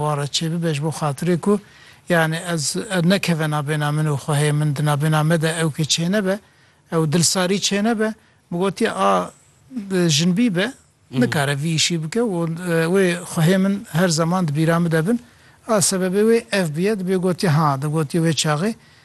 Wan re çêbibe ji bo xatirê ku yanî ez nekeve nabêna min û xwehê min di nabêna me de ewkê çênebe, ew dilsarî çênebe. Min gotiye a jinbî be nikare vî îşî bike û wê xwehê min her zeman di bîra min de bin. A sebebê wê ev bûye. Dibê gotiye ha, digotiye wê çaxê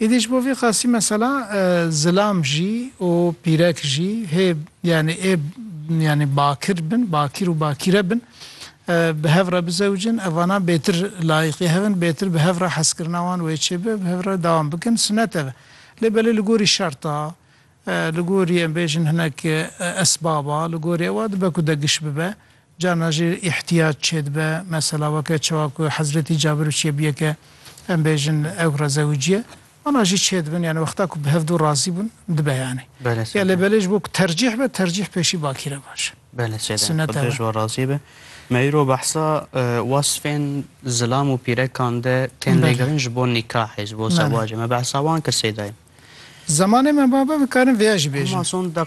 Îdî ji bo vî qasî mesela zilam jî û pîrek jî hê yanî ê yanî bakir bin, bakîr û bakîre bin bi hev re bizewicin, evana bêtir layiqî hev in, bêtir bi hev re hezkirina wan wê çêbe, bi hev re dewam bikin, sunet ev e. Lê belê li gorî şerta, li gorî em bêjin hinek esbaba, li gorî ewa dibe ku de giş bibe. Carna jî îhtîyac çêdibe. Mesela weke çawa ku Hezretî Cabir û çiyê bûye ke em bêjin ew re zewicî ye. Wana jî çêdibin yanî wexta ku bi hev du razî bûn dibe yanî. Belê Ya lê sede. belê ji bo ku tercîh be tercîh pêşî bakîr e baş e. Belê sede em Sunet xwe ew e. dijwa razî be. Me îro behsa wasfên zilam û pîrekan de tên Belê. lêgirin ji bo nîkahê, ji bo Belê. zewacê. Me behsa wan kir sêdayê. Zemanê me ma be dikarin vêya jî Hema bêjin. son deq.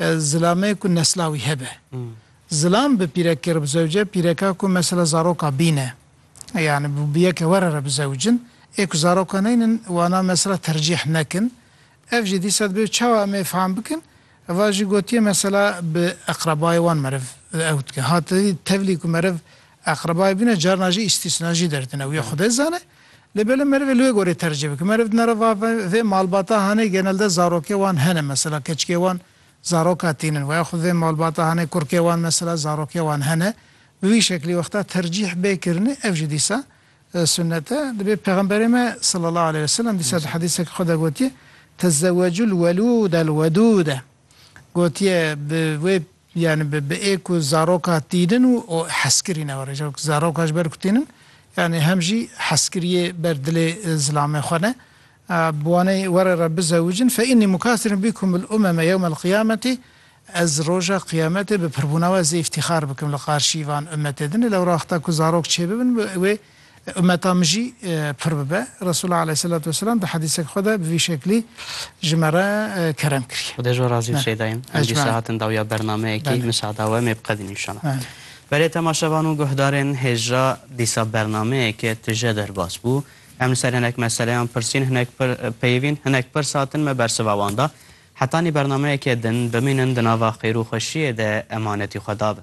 Zilamê ku nesla wî hebe. Zilam bi pîrekê re bizewce, pîreka ku mesela zaroka bîne. Yanî bi yeke were re bizewicin. Ê ku zaroka neynin wana mesela tercîh nekin. Ev jî dîsa divê çawa em ê fam bikin? Va jî gotiye mesela bi eqrebayê wan meriv ew dike. Ha tevlî ku meriv eqrebayê bîne carina jî îstîsna jî derdine. Wî xwedê zane. Lê belê meriv ê li wê gorî tercîh bike. Meriv di nera va vê malbata hanê genelde zarokê wan hene mesela keçikê wan zaroka tîn in we ya xwe vê malbata hanê kurkê wan mesela zarokê wan hene. Bi wî şeklî wexta tercîh bê kirinê ev jî dîsa sunnet e. Dibê pexemberê me selalahu aleyh weselem dîsa di hedîsekî xwe de gotiye, Tezewecul welûdel wedûde. Gotiye bi wê yanî bi bi ê ku zaroka tînin û û heskirî ne were jî zaroka ji ber ku tînin yanî hem jî heskiriyê ber dilê zilamê xwe ne bi wanê were re bizewicin fe înni mukasirun bîkum bil umeme yewmel qiyametî ez roja qiyametê bi pirbûna we zê îftîxar bikim li qarşî van ummetê din e lewra wexta ku zarok çêbibin bi wê Ummeta min jî pir bibe. Resûlullah aleyhîsselatu wesselam di hedîsek xwe de bi vî şeklî ji me re kerem kiriye. Xwedê ji we razî bi Şeyda yên. Em dîsa hatin dawiya bernameyekî. Misada we mê biqedîn înşala. Belê temaşevan û guhdarên hêja dîsa bernameyeke tije derbas bû. Em li ser hinek meseleyan pirsîn, hinek pir peyivîn, hinek pirs hatin me bersiva wan da. Hetanî bernameyeke din bimînin di nava xêr û xweşiyê de emanetî xwe dabin.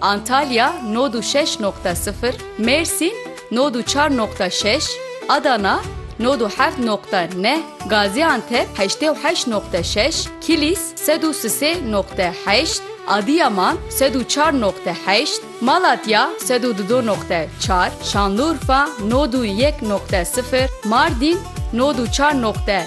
Antalya nod û şeş noqte sifir, Mêrsîn nod û çar noqte şeş, Adana nod û heft noqte neh, Gazîantep heştê û heşt noqte şeş, Kilîs sed û sisê noqte heşt, Adîyaman sed û çar noqte heşt, Malatya sed û dudo noqte çar, Şanlurfa nod û yek noqte sifir, Mardîn nod û çar noqte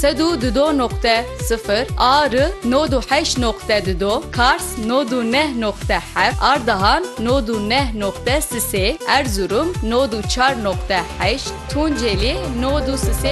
Sed û du do noqte sifir a ri nod û heşt noqte du do Kars nod û neh noqte heft Ardahan nod û neh noqte sisê Erzurum nod û çar noqte heşt Tunceli nod û sisê